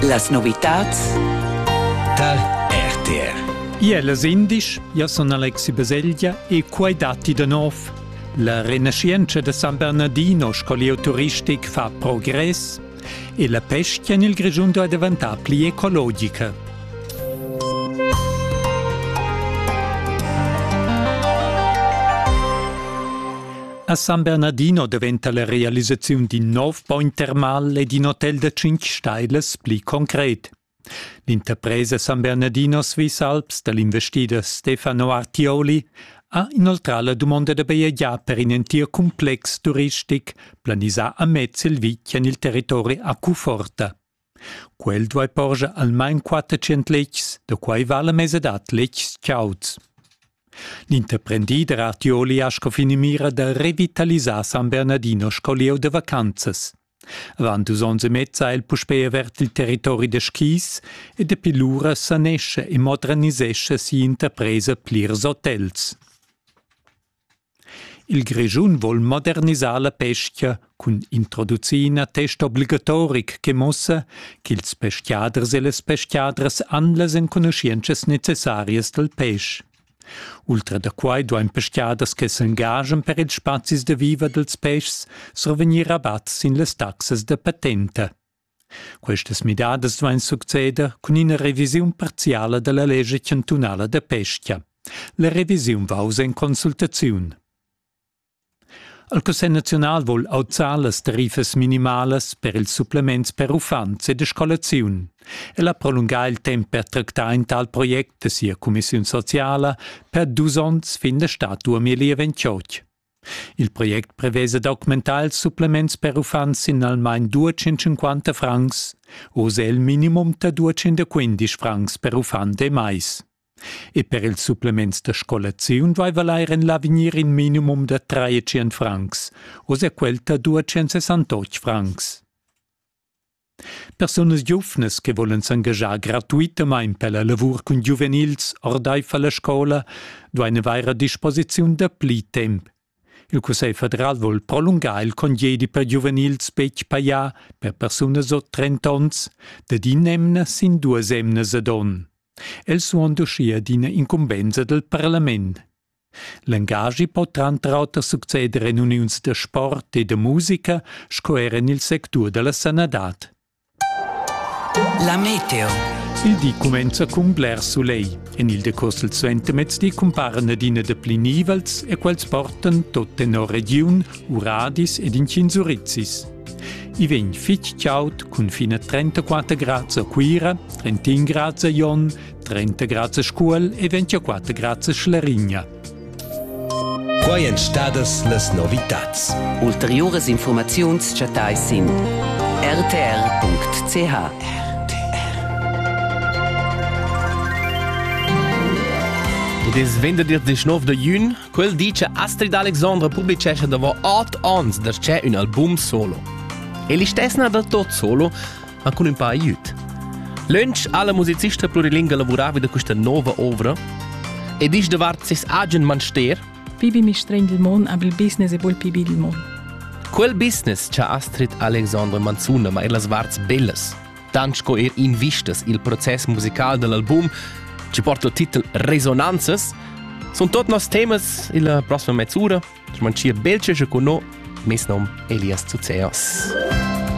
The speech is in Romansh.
Las novitads Tal RTR Iellas indisch ja sun Alexi Baselgia e quai datti da nov. La renaschientscha da San Bernardino sco lieu turistic fa progress e la pesca en il Grischun è diventà pli ecologica. A San Bernardino daventa la realisaziun d'in nov bogn termal ed in hotel da tschintg stailas pli concret. L'interpresa San Bernardino Swiss Alps dal investider Stefano Artioli ha inoltrà la dumonda da bajegiar per in entir cumplex turistic planisà amez il vitg en il territori a Cuforta. Quel duai porscher almain quattrocent letgs, da quai vala mesadad letgs chauds. L'interprendider Artioli ha sco finamira da revitalisar San Bernardino sco lieu da vacanzas. Avant dus onns e mezza ha el puspè avert il territori da skis e dapi lura sanescha e modernisescha sia interpresa plirs hotels. Il Grischun vol modernisar la pescha cun introducir ina testa obligatoric che muossa ch'ils peschiaders e las peschiadras han las enconuschientschas necessarias dal pesch. Ultra da quai duain peschiaders che s'engaschan per ils spazis da viver dals peschs survegnir rabat sin las taxas da patenta. Questas midadas duain succeder cun ina revisiun parziala da la lescha chantunala da pesca. La revisiun va uss en consultaziun. Il Cussegl naziunal vul auzar las tarifas minimalas per ils supplements per uffants e da scolaziun. El ha prolungà il temp per tractar in tal project da sia cumissiun sociala per dus onns fin da stà 2028. Il project prevesa d'augmentar ils supplements per uffants in almain 250 francs, oz è il minimum da 215 francs per uffant e mais. E per ils supplements da scolaziun vaiva l'air en l'avegnir in minimum da 300 francs, oz è quel da 268 francs. Persunas giuvnas che volen s'engaschar gratuitamain per la lavur cun giuvenils ordaifer la scola duain avair a disposiziun da pli temp. Il Cussegl federal vul prolungar il congedi per giuvenils betg pajà per persunas od 30 onns dad in'emna sin duas emnas ad onn. Els suon uschia d'ina incumbensa del parlament. L'engaschi po tranter auter succeder en uniuns da sport e da musica sco er en il sectur da la sanadad. La meteo. Il di cumenza cun bler sulegl. En il decurs del suentermezdi cumparan adina dapli nivels e quels portan tot tenor regiun, uradis ed inchinsurizis. I vegn fitg chaud cun fin a 34 grads a Cuira, 31 grads a Jon, 30 grads a Scuol e 24 grads a Schlarigna. Quai èn stadas las novitads. Ulteriuras informaziuns chattai sin rtr.ch. It is venderdir dis 9 de jun. Quel dice Astrid Alexandra publicescha dopo 8 ans da c'è un album solo. E l'istesna da tot solo ha cun ün pa aiüt. Lönch ha la musicista plurilinga lavuravi da questa nova ovra ed isch davart ses agen manster. Pibi mi strengel mon ab il business e bol pibi il mon. Quel business cha Astrid Alexandre manzuna ma er las varts bellas, tant sco er invistas il proces musical dell'album, ci porta il titel Resonanzas, sun tot nos temas illa prossima mezz'ura, ci mancia belce con no, mes nom Elias Zuzeos.